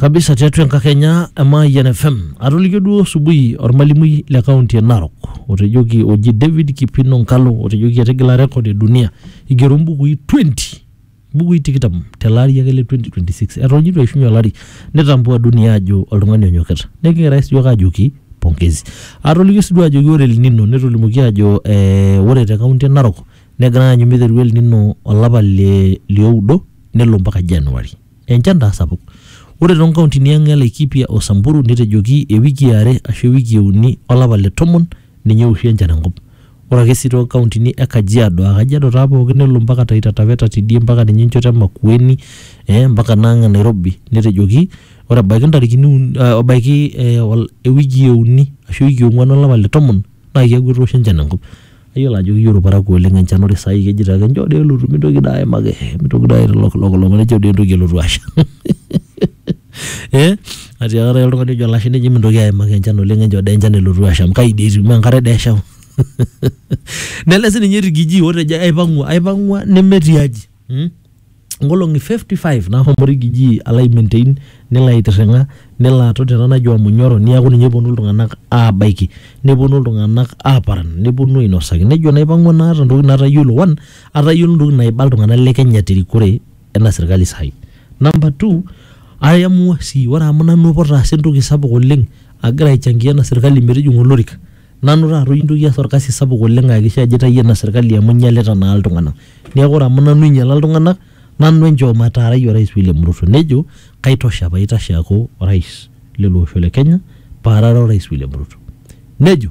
kabisa tiatua enkakenya e Mayian FM atolikio duo subuhi ormalimui le kaunti e Narok otejoki oji David Kipino Nkalo otejoki etigila rekod e dunia igero mbukui 20 bukui tikitam tele ari ake le 2026 eton itu eishunye olari nitambua dunia ajo oltung'ani onyokita neeku kigira sii yiok ajoki pongezi atolikio sii duo ajoki ore El Nino netolimuoki ajo eh, ore te kaunti e Narok negirai aanyu miteru El Nino olapa le lioudo nelo mpaka January enchan taa sapuk ore toonkauntini ang e Laikipia o Samburu netejoki ewiki e are ashu ewiki e uni olapa le tomon ninye ewoshie enchan enkop. Ore ake sii too kauntini e Kajiado aa Kajiado taa pooki nelo mpaka Taita Taveta tidie mpaka ninye enchoto e Makueni ee mpaka naa ang e Nairobi netejoki ore ebaiki ntarikini uni ebaiki ewiki e uni ashu ewiki e ong`uan o lapa le tomon naa keeku etoosho enchan enkop. Naa iyiolo ajo keyieu ilparakuo oleng enchan ore saai kejito ake enchoo doi elotu mintoki doi aimaki mintoki doi aitolok lok nejo doi entoki elotu asha. eh atiaka taata oltung'ani ojo olashe neji mintoki aimaki enchan oleng enchoo dee enchan elotu asham kai dii etiu mee enkare dee eshau nele sininye rigiji otejo aipang'ua aipang'ua nemetii aji mm? nkolong'i 55 nahomo rigiji alo ai maintain nelo aitirring'a nelo aton tena naji omunyoro niaku ninye eponu iltung'anak abaiki neponu iltung'anak aparan neponu ainosaki nejo naipang'ua naata intokitin natayiolo one atayiolo intokitin naiba iltung'anak le kenya terikore ena sirkali sahi. Number two, I am sii ore amu nanu apa otaasa entoki sapuk oleng agira aichangia ena sirkali metijing'a olorika, nanu taata ointoki aas orkasi sapuk oleng aakikisha ajo aitayio ena sirkali amu einyalita naa iltung'anak. Neeku ore amu nanu oinyiala iltung'anak, nanu enchoo mataarai orais William Ruto. Nejo kaitosha paitashe aaku orais lele osho le Kenya paarare orais William Ruto. Nejo